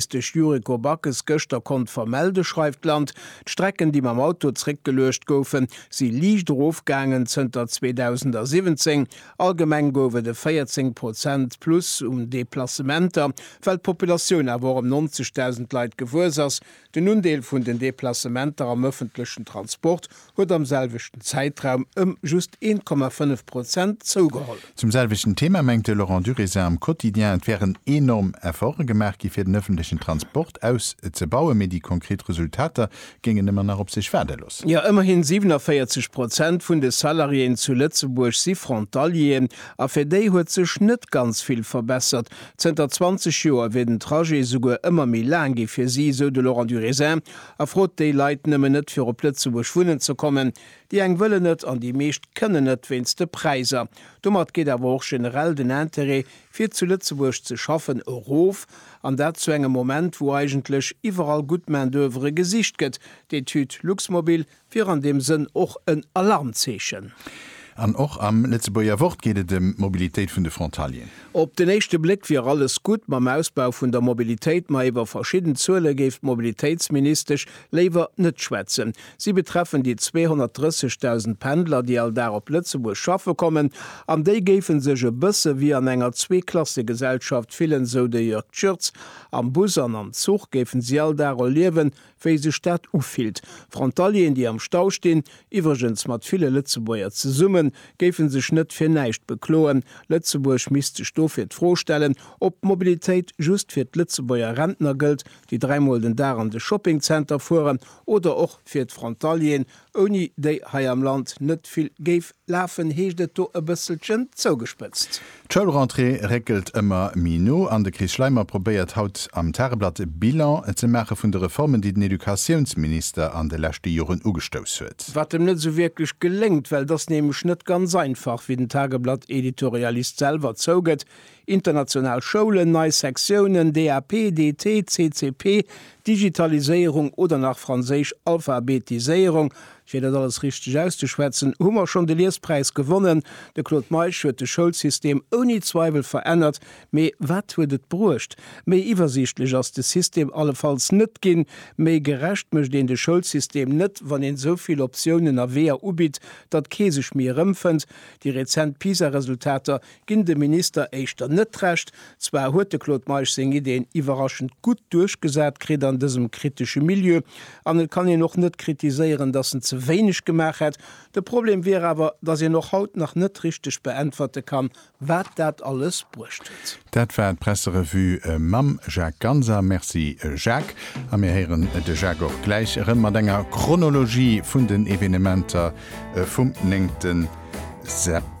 Wéi de Yuriko Backes gëschter konnt vermelde schreift d'Land, d'Strecken, déi mam Auto zréckgeluecht goufen, si liicht erofgaangen zënter 2017. Allgemeng gouf et e 14 Prozent Plus un Deplacementer, well d'Populatioun awer och ëm 90.000 Leit gewuess ass. Den Undeel vun den Deplacementer am ëffentlechen Transport huet am selwechten Zäitraum ëm just 1,5 Prozent zougeholl. Zum selwechten Thema mengt de Laurent Durézin am Quotidien, et wären enorm Efforte gemaach gi fir den ëffentlechen Transport auszebauen, mee déi konkret Resultater géingen ëmmer nach op sech waarde loossen. Jo, ëmmerhin 47 Prozent vun de Salariéen zu Lëtzebuerg si Frontalieren, a fir déi huet sech net ganz vill verbessert. Zënter 20 Joer wier den Trajet souguer ëmmer méi laang gi fir si, sou de Laurent Durézin. A frot déi Leit nëmmen net fir op Lëtzebuerg wunnen ze kommen. Déi eng wëllen net an déi meescht kënnen net wéinst de Präiser. Domat geet awer och generell den Interêt fir zu Lëtzebuerg ze schaffen erof, an dat zu engem Moment wou eigentlech iwwerall gutt Main d'oeuvre gesicht gëtt. D'Etüd Luxmobil Wier an deem Sënn och en Alarmzeechen. An och am Lëtzebuerger Wort geet et ëm d'Mobilitéit vun de Frontalieren. Op den éischte Bléck wier alles gutt mam Ausbau vun der Mobilitéit, ma iwwer verschidden Zuele géif d'Mobilitéitsministesch léiwer net schwätzen. Si betreffen déi 230.000 Pendler, déi all Dag op Lëtzebuerg schaffe kommen, an déi géife sech e bësse wéi an enger Zweeklassegesellschaft fillen, sou de Jörg Schürtz. Am Bus an am Zuch géife si all Dag erliewen, wéi sech dat ufillt. Frontalieren, déi am Stau stinn, iwwregens mat ville Lëtzebuerger zesummen, géife sech net fir näischt bekloen. Lëtzebuerg misst sech dofir d'Fro stellen, ob d'Mobilitéit just fir d'Lëtzebuerger Rentner gëllt, déi dräimol den Dag an de Shoppingzenter fueren, oder och fir d'Frontalieren, ouni déi hei am Land net vill géif lafen, heescht et do e bësselchen zougespëtzt. D'Schoulrentrée réckelt ëmmer méi no an de Chris Schleimer probéiert haut am Tageblatt e Bilan ze maache vun de Reformen, déi den Educatiounsminister an de leschte Joren ugestouss huet. Wat em net esou wierklech geléngt, well et ass nämlech net ganz einfach, wéi den Tageblatt-Editorialist selwer zougëtt, International Schoulen, nei Sektiounen, DAP, DT, CCP, Digitaliséierung oder nach franséisch Alphabetiséierung, fir dat alles richteg auszeschwätzen, hu mer schonn de Liespräis gewonnen. De Claude Meisch huet de Schoulsystem ouni Zweiwel verännert. Mee wat huet et bruecht? Méi iwwersiichtlech ass de System allefalls net ginn. Méi gerecht mécht een de Schoulsystem net, wann een esou vill Optiounen a Weeër ubitt, datt kee sech méi erëmfënnt. Déi rezent PISA-Resultater ginn dem Minister éischter net d'Recht. Zwar huet de Claude Meisch seng Ideen iwwerraschend gutt duerchgesat kritt an dësem kritesche Milieu, an et kann een och net kritiséieren, datt en ze wéineg gemaach hätt. De Problem wier awer, datt een och haut nach net richteg beäntwerte kann, wat dat alles bruecht huet. Dat war d'Presserevue mam Jacques Ganser. Merci Jacques. A mir héieren de Jacques och gläich erëm mat enger Chronologie vun den Evenementer vum 9 September.